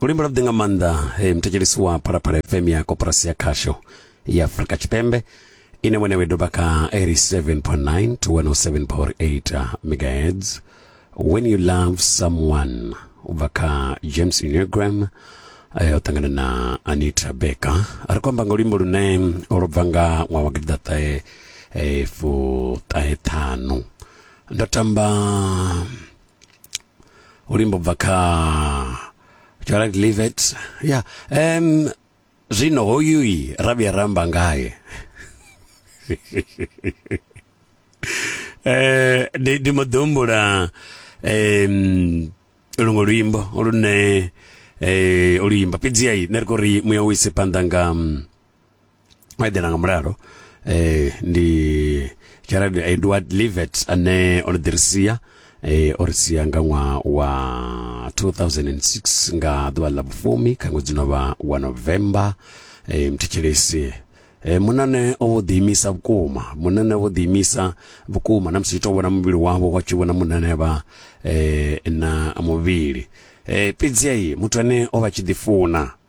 luimbo lwavhuḓi nga maanḓa hey, muthetshelesi wa phalaphala fm ya koporasi ya khasho ya afrika tshipembe ine wene we doba kha 87.9 to 107.8 megahertz when you love someone u bva kha james unegram eh, o ṱangana na anita becker a ri khou amba nga luimbo lune lwo bva nga ṅwaha wa gidiḓaṱahe eh, fuṱahe ṱhanu ndo tamba ulimbo bva kha Gerald Livet ya em zwino hoyu yi ra vhuya ra amba ngaye eh ndi ndi mbo ḓi humbula em luṅwe luimbo lune eh oluimba fhedziha i nṋe ri khou ri muya u ise phanḓa nga mm, eḓela nga mulalo eh ndi Gerald Edward Livet ane o ḓi ri sia eh o ri sia nga ṅwaha wa 2006 nga ḓuvha ḽa vhufumi kha ṅwedzi no vha wa November eh mthetshelesi E, munane o vho ḓiimisa vhukuma munane o vho ḓiimisa vhukuma na musi tou vhona muvhili wavho wa tshi vhona munane vha e, na muvhili e, fhedzi muthu ane o vha tshi ḓifuna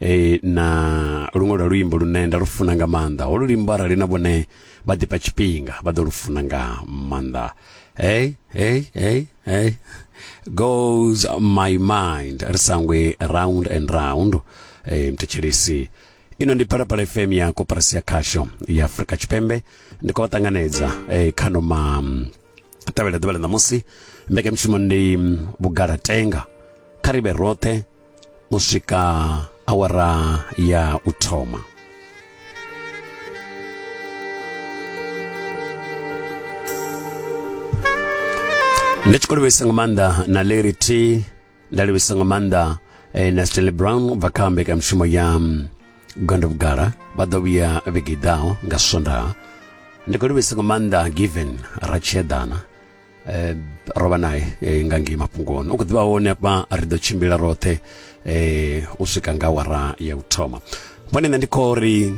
e, na luṅwe lwa luimbo lune nda lu funa nga maanḓa holu luimbo arali na vhone vha ḓifha tshifhinga vha ḓo lu funa nga maanḓa hey hey hey hey goes my mind ri sangwe round and round e, mthetshelesi ino ndi phalaphala fm ya koporasi ya khasho ya afurika tshipembe ndi khou vha ṱanganedza e, kha noma tevhela ḓuvha ḽa ṋamusi mbekanyamushumo ndi vhugalatenga kha ri vhe roṱhe u swika awara ya u thoma ndi tshi khou livhisa nga maanḓa na larry t nda livhisa nga maanḓa eh, na stanley brown u bva kha mbekanyamushumo ya mm, gondo vhugala vha ḓo vhuya vhege i ḓaho nga swondaha ndi khou livhisa nga maanḓa given ratshedana eh, rovha naye eh, nga ngei mafhungoni u khou ḓivha hone afha ri ḓo tshimbila roṱhe eh, u swika nga wara ya u thoma vhone nṋe ndi khou ri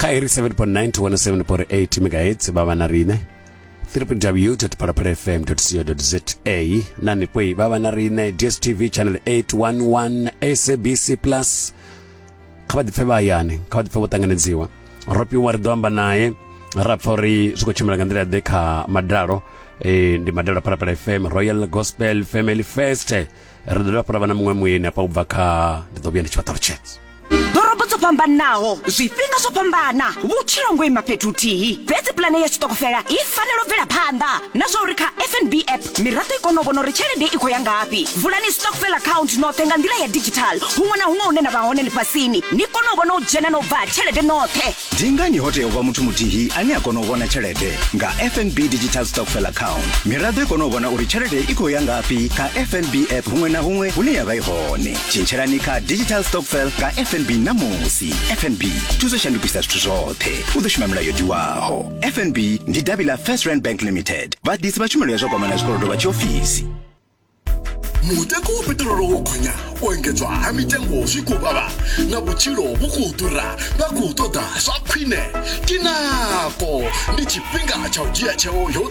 kha iri 7.9 to 107.8 megahertz vha vha na riṋe www.palapalafm.co.za na nipoi vha vha na riṋe dstv channel 811 sabc plus kha vha ḓipfe vha hayani kha vha ḓipfe vho ṱanganedziwa ro fhiwa ri ḓo amba naye ra pfa uri zwi khou tshimbila nga nḓila ḓe kha madalo e, ndi madalo phalaphala fm royal gospel family fest ri ḓo dovha fhura vha na muṅwe muyeni afha u bva kha ndi ḓo vhuya ndi tshi vha ṱalutshedza ḓorobo dzo fhambanaho zwifhinga zwo fhambana vhutshilo ngo ima fhethu huthihi fhedzi pulane ya tshiṱokofela i fanela u bvela phanḓa na zwa uri kha fnb app miraḓo i kone u vhona uri tshelede i khou ya ngafhi vulani stockfel account noṱhe nga nḓila ya digital huṅwe na huṅwe hune na vha hone ḽifhasini ni kone u vhona u dzhena na u bva tshelede noṱhe ndi ngani ho tea u vha muthu muthihi ane a kona u vhona tshelede nga fnb digital stockfel account miraḓo i kone u vhona uri tshelede i khou ya ngafhi kha fnb app huṅwe na huṅwe hune ya vha i hone tshintshelani kha digital stockfel nga fnb ṋamusi fnb thuso shandukisa zwithu zwoṱhe u ḓo shuma milayo tiwaho fnb ndi davhi ḽa first rand bank limited vhaḓisi vha tshumelo ya zwa kwamana zwikolodo vha tshiofisi mutengo wa peṱirolo wo gonya u engedzwa ha mitengo zwi khou vhavha na vhutshilo vhu khou ḓura vha khou ṱoḓa zwa khwine kinako ndi tshifhinga tsha u dzhia tsheo yo